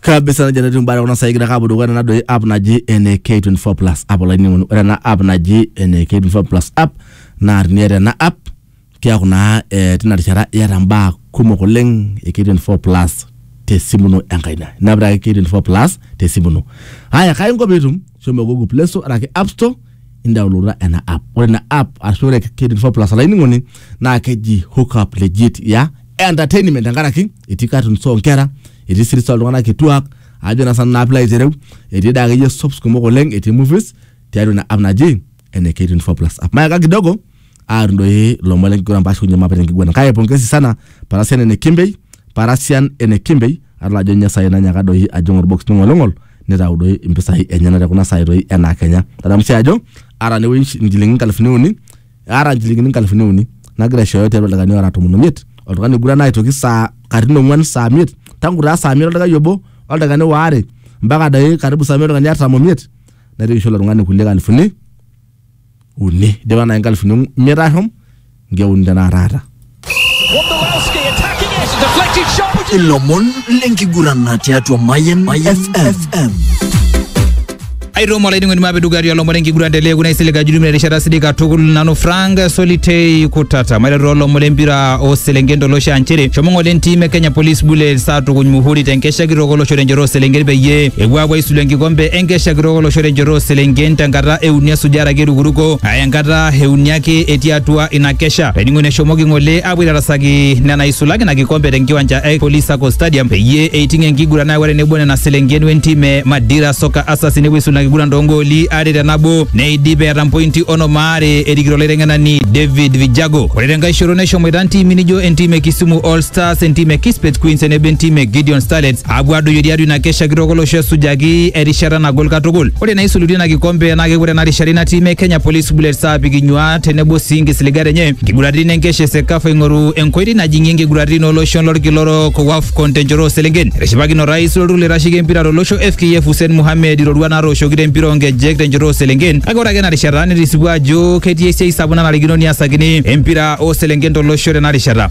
kabisa najo enetii mbaa kuna saai kidaka apuo dukuya nena doi app naji ene K24 plus app olainining'oni ore ena app naji ene K24 plus app naa teniata ena app keaku naa eh, tina rishata iyata mbaa kumok oleng e K24 plus tesimu ino enkaina inapita ake K24 plus tesimu ino haya kai inko piitum shomo google play store araki app store indaulota ena app ore ina app ashu ore K24 plus olainining'oni naa keji hookup legit ya entertainment tenkaraki etii cartoons oonkera, etii series ooltung'anak kituaak ajo naa sinanu naa piilo aitereu, etii doi akeyie soaps kumok oleng, etii movies tiatua ina app naji ene K24 plus app. Mayaka kidogo aar doi ilomon lenkiguran paashukunye mape tenkiguran kake pongezi sana parasian ene Kimbei, parasian ene Kimbei adol ajo ninye saai nanyaaka doi ajing olbox ning'oling'ol nitau doi impisai enyenak te kuna saai doi enaa kenya. Tadamu sii ajo aata naa ewuei inchilingini inkalifuni uni aata nchilingini nkalifuni uni nagira aishooyo tiatua ildakani ora tomon omiet oltung'ani oiguran aitoki saa katitin ong'uan saa miet tangu taa saa miet oldakai obo oldakani waare mpaka dai karibu saa miet oltung'ani artam omiet naitoki aisho ilo tung'ani kulie kalifuni uni idipa nai nkalifuni imiet ashom nkeuni tenakata aata ilomon lenkigurana tiatua Mayan FM. aitomo olainining'oni maapidugari olomore enkiguran telee kuna isilig ajulumina erishata sidai katukul nanu frank solitei kutata maiteru olomore lempira ooselenken tolosho aa nchere shomo ng'ole entim e kenya police bullets aatukuny muhuri tenkesha kitok olosho tenchoto ooselenken peyie epuo aapuo aisulu enkikombe enkesha kitok olosho tenchoto ooselenken tenkata euni esujare ake erukuruko aa enkata euni ake etii atua ina kesha Sha pening'uno eshomoki ng'ole apuo aitarasaki nena isulaki ina kikombe tenkiwanja e Police Sacco Stadium peyie eiting enkiguran nayawua tenebo nena selenken wentim e Madira Soccer Assas nepuo aisul ina kiguran toongooli are te nabo neidip eeta mpointi onom aare erikito olaiteng'enani David Vijago. Ore tenkae shoto neshomoita ntiimi nijo entim e Kisumu All Stars, entim e Kispet Queens tenebo entim e Gideon Starlets apuo adoyio tiatua ina kesha kitok olosho esujaki erishata nagol katukul. Ore naisulutua ina kikombe naa kepuo tena rishata ina tim e Kenya Police Bullets aapik inyuaat tenebo sii nkisiligat enye nkiguraritin enkesha esekafa ing'oru enkoitoi najing'ie nkiguraritin olosho lolkila orok o AFCON tenchoto ooselenken etishipakine orais lolturur loitasheki empira tolosho FKF Hussein Mohamed iroruat natooshoki tempira oonkejek tenchoto ooselenken kake ore ake ena rishata netisipua ajo ketii esiai sapuk nanarikino niasakini empira ooselenken tolosho tena rishata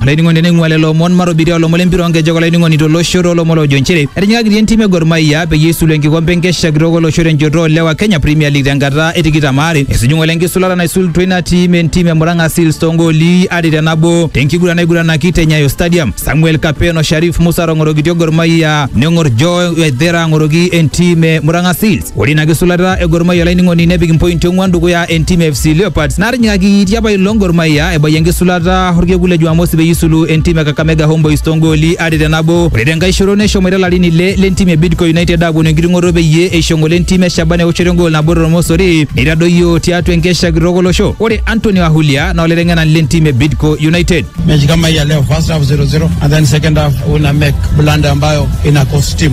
Olainining'oni teneing'ua lelo omon matobirie olomon lempira onkejek olainining'oni tolosho toolomon loojo nchere etijing'akitia entim e Gor Mahia peyie eisulu enkikompe enkesha kitok olosho tenchoto oolewa Kenya Premier League tenkata e tikitam aare. Esuju ng'ole enkisulata naisulutua ina tim entim e Murang'a Seals toongooli are te nabo tenkiguran naiguranaki te Nyayo Stadium. Samuel Kapen o Sharif Musa aatong'orokitia Gor Mahia neng'or Joe Waithera ang'oroki entim e Murang'a Seals. Ore ina kisulata e Gor Mahia olainining'oni nepik impointi ong'uan dukuya entim e FC Leopards natinyikaki tiapa ilo Gor Mahia ebayie enkisulata orkekun le Jumamosi peyie isulu entim e Kakamega Homeboys toongooli are te nabo. Ore tenkae shoto neshomoita ilarin ile lentim e Bidco United aaponu enkiting'oto peyie eisho ngole entim e Shaban eoshoto engool nabo tormosori neitadoyio tiatua enkesha kitok olosho. Ore Anthony Wahulia naa olaiteng'enani lentim e Bidco United. mechi kama hii ya leo first half 0-0 and then second half una make blunder ambayo ina cost team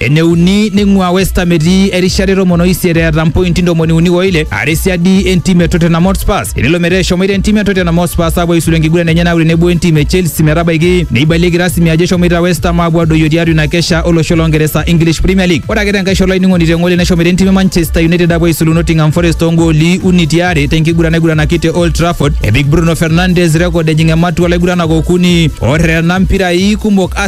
Eneuni neing'ua West Ham etii erishata e tomon oisiet eeta mpointi ntomoni uni oile are siadi entim e Tottenham Hotspur tenelo metaa eshomoita entim e Tottenham Hotspur aapuo aisulu enkiguran enye naaku tenebo entim e Chelsea metabaiki neibalieki rasmi ajo eshomoita West Ham aapuo adoyio tiatua ina kesha olosho loo Ngeresa English Premier League. Ore ake tenkae shoto olainining'oni te ng'ole neshomoita entim e Manchester United aapuo aisulu Nottingham Forest too ngooli uni ti are tenkiguran naiguranaki te Old Trafford epik Bruno Fernandes rekod ejing ematua olaiguranak okuni oterena mpirai kumok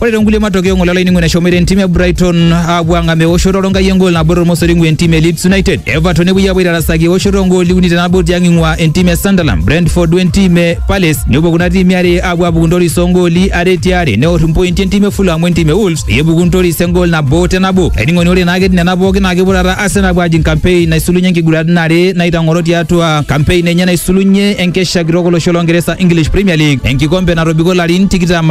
Ore tonkulie matokeo ng'ole olainining'oni eshomoita entim e Brighton aapuo ang'am eoshoto olonkai engol nabo tormosori ing'ua entim e Leeds United. Everton nepuoi aapuo aitarasaki eoshoto ongooli uni tenabo tiang' ing'ua entim e Sunderland, Brentford wentim e Palace. Nepuo kuna tiimi are aapuo aapuku ntoris ongooli are ti are neor impointi entim e Fulham wentim e Wolves peyie epuku ntoris engol nabo te nabo. Olainining'oni ore naa ketii nena pooki naa kepuo taata Arsenal aapuo ajing kampein naisulunye nkiguraritin are naitang'oro tiatua kampein enye naisulunye enkesha kitok olosho longeresa English Premier League enkikombe natobiko larin tikitam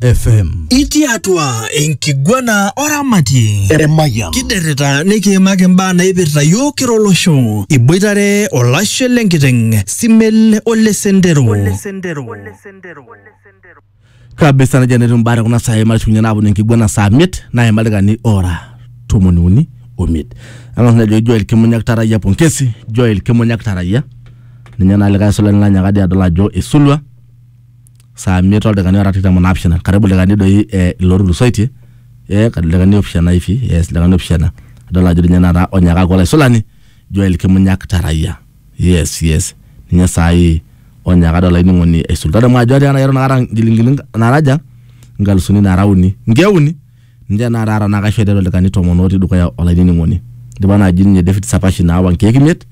FM. Itii atua enkiguana oramatie. Emayian. Kiderrita nikiimaki imbaa naipirta yiok kira olosho. Iboitare olashe lenkiteng, Simel ole Sendero. kabisa najia netiu imbaa tekuna saai matushukunye naaponu enkiguana saa miet naima ildaikani ora tomoni uni omiet ang'as najoki Joel Kimunyak Tarayia pongesi Joel Kimunyak Tarayia ninye naa likae aisulani lanyaka dii adol ajo isulua saa imiet oldakikani ora tikitam onaapishana karibu ildakikani doi eh, ilo otulusoitie eh, karibu ildakikani opishana hivi yes ildakikani opishana adol ajo ninye taata onyakaki olaisulani Joel Kimunyak Tarayia yes yes ninye saai onyaka adol ainining'oni aisul tadamu ajo atiaka nai eton akata nkilinkiling naraja nkalusuni nara uni nkeuni Ninche naa taata naa kaisho aiteru ildaikani tomon otii dukuya olainining'oni. Eidipa naaji ninye David Sapashi naawa nkeek imiet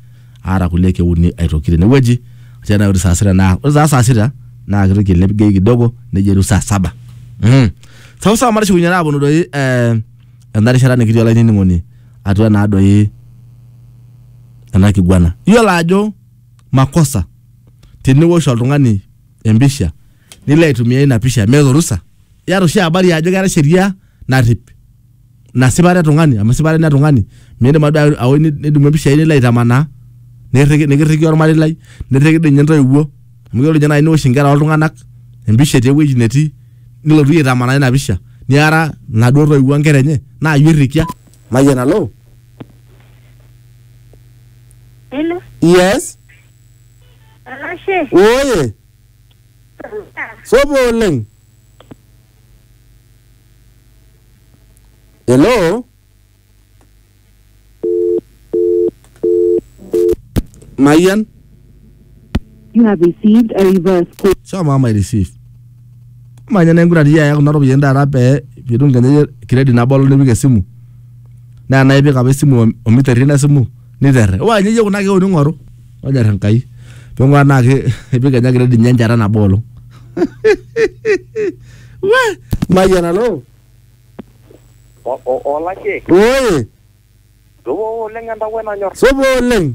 aata kulie keek uni aitoki tenewueji atii naaji saa sita naa ore taa saa sita naa keitoki ailep gei kidogo nejo eiruk saa saba. Mm. Sawa sawa matishikunye naa aaponu doi eh, ena rishata nikitii olainining'oni atua naa doi ena kiguana. Iyiolo ajo makosa teniwosh oltung'ani empisha nilo aitumia ina pisha meeta orusa iyata oshi habari ajo keeta sheria narrip ina sipata e tung'ani amu esipata ina e tung'ani miindim ade aoi ni- nidumu impishai nilo aitamanaa nikirriki nikirriki ormarei lai nirriki dii ninye intoiwuo amu yiolo ninye naaji niwosh inkera oltung'anak empisha etii ewueji netii nilotu iyie aitamanaa ina pisha niara inaduo toiwuo onkera enye naa iyie oirrikia mayian alo Hello, yes olashe. oye Sopo oleng. Hello? Mayian? You have received a reverse call. Shomo ama receive. Manya na enkura tiya kuna ropiyiani taata pee pitum kenya credit nabolo nipik esimu. Naa naipik apa esimu o- omiterri ina simu niterre. Waa nye iyie kuna keon ing'oru. Ojar Enkai. Ping'uraa naa ki- ipik Enye grade enye enchata nabo olong. We! Mayian alo. O- o- Olashe, Woi! duo oleng entawuo nanyor. Supa oleng.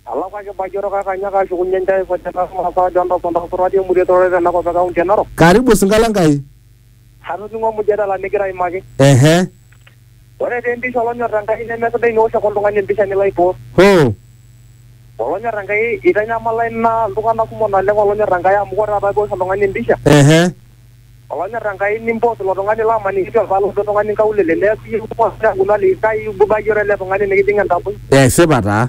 Alakwa kibayioro kake anyaaka ashukunye enchai kojita masaa ajo entau entau surati emuri etororo tena kop e kaunti e Narok. Karibu Sinkala Enkai. Atoning'o mujadala nigira aimaki. Ehe. Ore taa empisha olonyor Enkai nemesidai niosh ake oltung'ani empisha nilo aipost. Hoo! Olonyor Enkai eitanyamala ina iltung'ana kumok naleng olonyor Enkai amu ore taata piosh oltung'ani empisha Ehe. olonyor Enkai nimpost ilo tung'ani laa maniki etii olpae loojo oltung'ani inkaulele neaku iyie ake oas neaku ilo aliki kai eibuba iyie oele tung'ani nikijing entaboi. Esipa taa.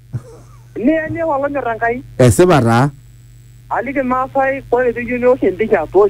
Niya niya olonyor Enkai. Esipa taa. Aliki Ilmaasai ore pee iyieu niwosh empisha toosho.